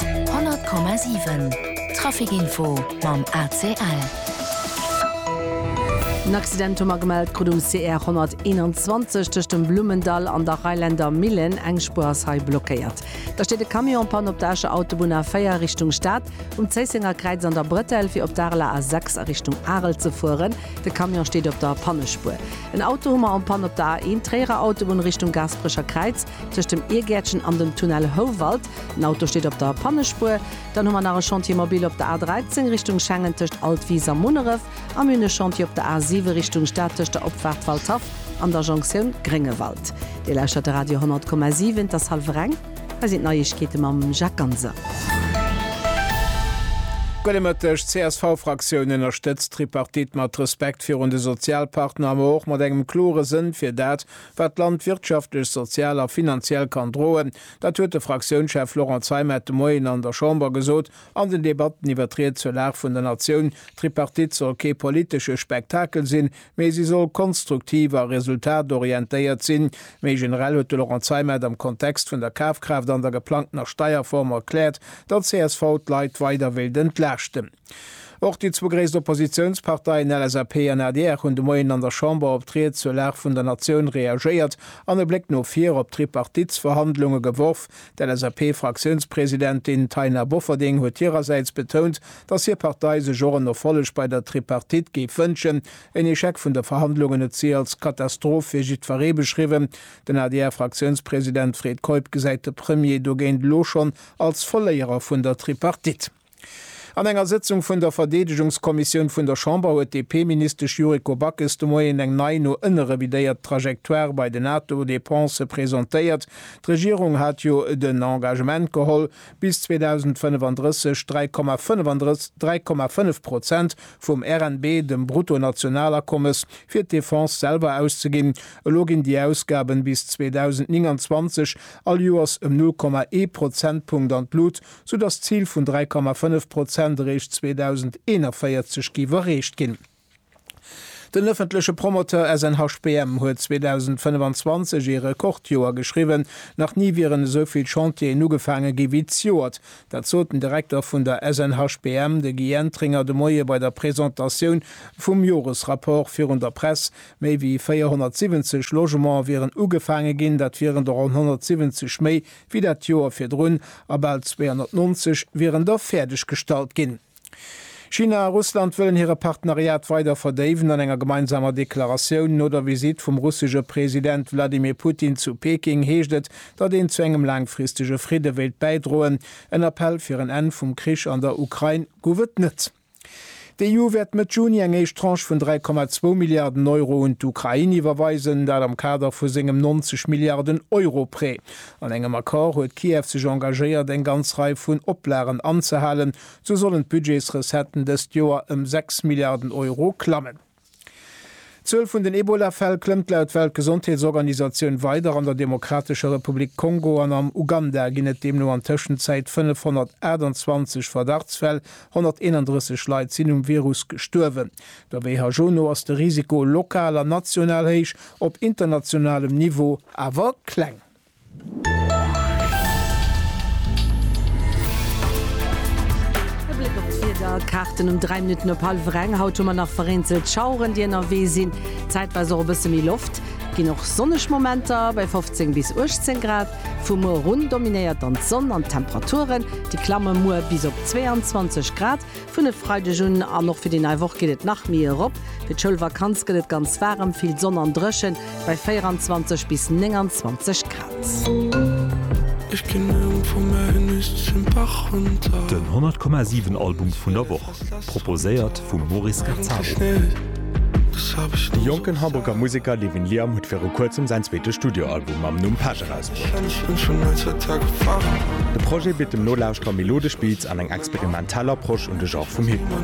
100,7 Trafic Info mam ACL. En Accident hu mer gemellt krut um CR 121 tëscht dem Blummendall an der Reiländer Millen. Eng Spuer ass hei blockéiert. Da steet e Camion en Panne op der Escher Autobunn A4 Richtung Stad, um Zéissenger Kräiz an der Bretelle, fir op d'ARLA A6 a Richtung Arel ze fueren. De Camion steet op der Pannespuer. En Auto hu mer en Panne op der A1 Tréierer Autobunn Richtung Gaasperecher Kräiz. Tëscht dem Iergäertchen an dem Tunnel Houwald. Den Auto steet op der Pannespuer. Dann hu mer nach e Chantier mobile op der A13 Richtung Schengen tëscht Altwis a Munneref. A mir hunn e Chantier op der A7 Richtung Stad tëscht der Opfaart Waldhaff an der Jonktioun Gréngewald. Dir lauschtert de Radio 100,7. Et ass hallwer eng. Hei sinn d'Neiegkeete mam Jacques Ganser. Gudde Mëtteg. D'CSV-Fraktioun ënnerstëtzt d'Tripartite mat Respekt virun de Sozialpartner, ma och mat engem klore Sënn fir dat, Wat d'Land wirtschaftlech, sozial a finanziell kann droen, dat huet de Fraktiounschef Laurent Zeimet de Moien an der Chamber gesot. An den Debatten iwwer d'Ried zur Lag vun der Natioun, D'Tripartite soll kee politesche Spektakel sinn, mee si soll konstruktiv a resultatorientéiert sinn. Méi generell huet de Laurent Zeimet am Kontext vun der Kafkraaft an der geplangtener Steierform erkläert, datt csv d'Leit weider wéilt entlaaschten. Och déi zwou gréisst Oppositiounsparteien LSAP an adr hunn de Moien an der Chamber op d'Ried zur Lag vun der Natioun reagéiert an e Bléck no vir op d'Tripartitsverhandlunge geworf. D'LSAP-Fraktiounspresidentin Taina Bofferding huet hirersäits betount, datt hir Partei sech och en Erfolleg bei der Tripartite géif wënschen. En Echec vun de Verhandlungen huet si als Katastroph fir jiddweree beschriwwen. Den ADR-Fraktiounspresident Fred Keup gesäit de Premier dogéint elo schonn als Verléierer vun der Tripartite. An enger Sëtzung vun der Verdeedegungskommissioun vun der Chamber huet d'DP-Ministesch Yuriko Backes de Moien eng nei, no ënne revidéiert Trajectoire bei den NATO-Depensë presentéiert. D'Regierung hat jo den Engagement geholl, bis 2035 dräi Komma 35 dräi Komma fënnef Prozent vum RNB, dem Bruttonationalakommes, fir d'Defense selwer auszeginn. Elo ginn déi Ausgaben bis 2029 all Joers ëm null Komma ee Prozentpunkt an d'Lut, sou dass d'Zil vun 3,5 Prozent eréischt 2041 géif erreecht ginn. Den ëffentleche Promoteur SNHBM huet 2025 ee Rekordjoer geschriwwen, nach ni wieren esou vill Chantieren ugefaange gi wéi d'Joert. Dat sot den Direkter vun der SNHBM, de Guy Entringer, de Moie bei der Presentatioun vum Joresrapport virun der Press. Méi wéi 470 Logementer wieren ugefaange ginn, dat wieren der ronn 170 méi wéi dat Joer virdrun, a bal 290 wieren da fäerdeg gestallt ginn. China a Russland wëllen hire Partenariat weider verdéiwen. An enger gemeinsamer Deklaratioun no der Visitt vum russesche President Wladimir Putin zu Peking heescht et, datt een zu engem laangfristege Fridde wéilt bäidroen. En Appell fir en Enn vum Krich an der Ukrain gouf et net. D'EU wäert Mëtt Juni eng éischt Tranche vun 3,2 Milliarden Euro un d'Ukrain iwwerweisen, dat am Kader vu sengem 90 Milliarden Euro Prêt. An engem Accord huet Kiew sech engagéiert, eng ganz Rei vun Oplagen anzehalen. Sou sollen d'Budgetsrecetten dëst Joer ëm 6 Milliarden Euro klammen. D'Zuel vun den Ebola-Fäll klëmmt laut Weltgesondheetsorganisatioun weider. An der Demokratescher Republik Kongo an am Uganda ginn et deemno an Tëschenzäit 528 Verdachtsfäll, 131 Leit sinn um Virus gestuerwen. Der WHO no ass de Risiko lokal an national héich, op internationalem Niveau awer kleng. E Bléck op d'Wieder, Kaarten um 3 Minutten op hallwer eng. Haut hu mer nach vereenzelt Schaueren, déi ënnerwee sinn, zäitweis och e bësse méi Loft. Et ginn och sonneg Momenter bei 15 bis 18 Grad. Vu muer erun dominéiert dann d'Sonn an d'Temperaturen, déi klamme muer bis op 22 Grad. Vun e Freideg un an och fir déi nei Woch geet et nach méi erop. Fir d'Schoulvakanz gëtt et ganz waarem, vill Sonn an dréchen bei 24 bis 29 Grad. Den 100,7 Album vun der Woch, proposéiert vum Maurice Gazzaro. De jonken Hamburger Museker Levin Liam huet viru kuerzem säin zweete Studioalbum mam Numm Pesch erausbruecht. De Projet bitt dem Nolauschterer melodesch Beats an eng experimentell Approche un de Genre vum Hip-Hop.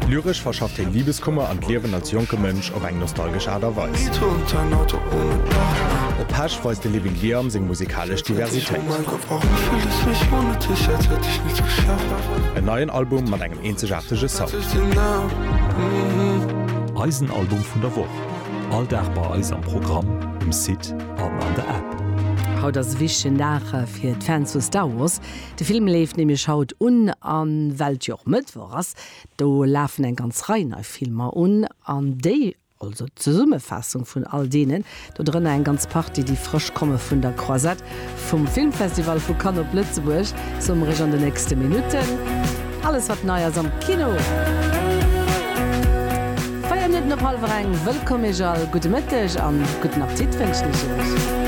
Lyresch verschafft hien Libeskummer an d'Liewen als jonke Mënsch op eng nostalgesch Aart a Weis. Op Pesch weist de Living Liam seng musikalesch Diversitéit. En neien Album mat engem eenzegaartege Sound. Eisen Album vun der Woch. All Dag bei eis am Programm, um Site an an der App. Haut ass e wichtegen Dag fir d'Fans vu Star Wars. De Film leeft nämlech haut un an well et jo och Mëttwoch ass, do lafen eng ganz Rei nei Filmer un an déi, also d'Zesummefaassung vun all deenen, dodrënner eng ganz Partie déi frësch komme vun der Croisette, Vum Filmfestival vu Cannes op Lëtzebuerg zum Rich an de nächste Minutten, alles wat nei ass am Kino. Véier Minutten op hallwer eng, wëllkomm Iech all, gudde Mëtteg an gudden Appetit wënschen ech Iech.